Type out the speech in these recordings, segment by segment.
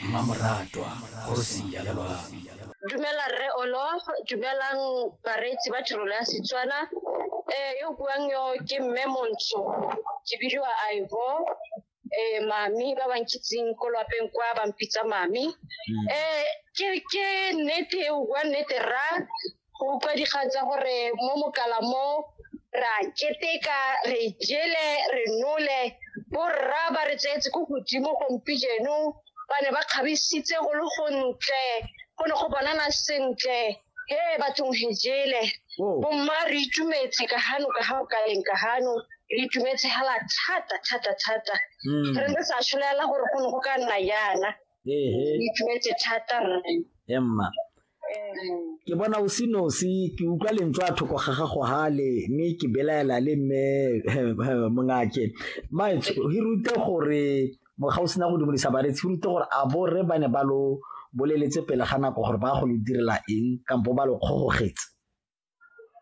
mmamoratwa kgosia ya loabi dumela rre olo dumelang bareetsi ba tirelo ya setswana um yo buang yo ke mme montsho ke bidiwa ivo eh mami ba ba nkitseng ko lwapeng kwa ba mpitsa mami eh ke ke nnete e bua nnete ra go utlwa dikgatsa gore mo mokala mo ra keteka re jele re nole borra ba re tseetse ko godimo gompi jeno ba ne ba kgabisitse go le gontle go ne go bonana sentle he bathong he jele oh. bomma re itumetse ka gano ka ga o ka leng ka gano re itumetse hela thata thata thata hmm. re ne sa tshwanelang gore go ne go ka nna yana ehe Ke itumetse thata rre. emma Mm. ke bona o se nosi ke utlwa lentswe a thoko ga gago hale mme ke belaela le mme eh, mongake maetsho re rute gore ga o sena go dumedisa baretsi re rute gore a borre ba ne ba lo boleletse pele ga nako gore ba go lo direla eng kampo ba lo kgogogetse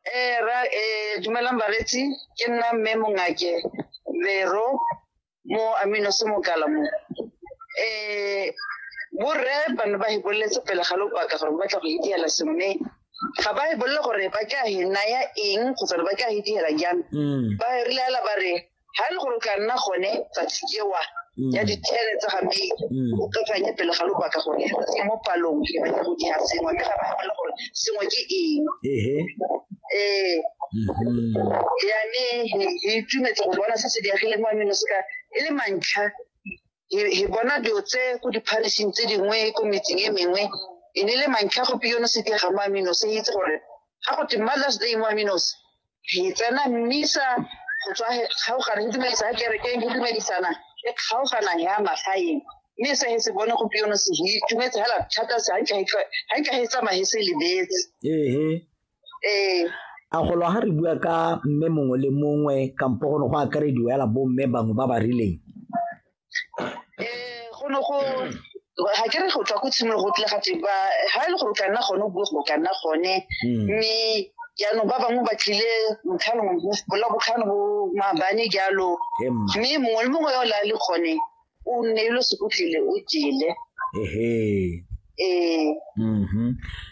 Eh, ra, eh, dumelang baretsi ke nna mme mongake vero mo amino se mokala mo eh borre ba ne ba hiboletse pele ga lopaka gore ba batla go idiela sengwe ga ba hibolele gore ba ka hi naya eng kgotsa ba ka hi diela jang mm. ba re lela ba re ga e le gore o tla nna gone tsatsi ewa mm. ya dithele tsa ga mei mm. o kakanye pele ga lobaka gone e mo palong e batla go dira sengwe mme ga ba gole gore sengwe ke eng ee mm-hmm. yane e itumetse go bona se se diagileng wa meno seka e le mantlha e bona dilo tse ko dipharising tse dingwe ko metseng e mengwe e ne le mantlha go piyone se diaga mo amino se itse gore ga go te mothers day mo aminos re tsena mmisa go tswa kgaogana go dumedisa ya kerekeng go dumedisana le kgaogana ya magaeng mme se se bone go piono se go itumetse hela thata se ga nka he tsamaye se lebetse ee ee a golo ga re bua ka mme mongwe le mongwe kampo go ne go akarediwa ela bo mme bangwe ba ba rileng eh go no go ga ke re go tswa ko tshimologo go tlile ga teng ba ga e le gore o ka nna gone o bue go ka nna gone hmm. mme jaanong ba bangwe ba tlile motlhano bola botlhano bo maabane jalo mme mongwe le mongwe yo la le gone o nne e lo sekotlile o jele ehe ee mm-hmm.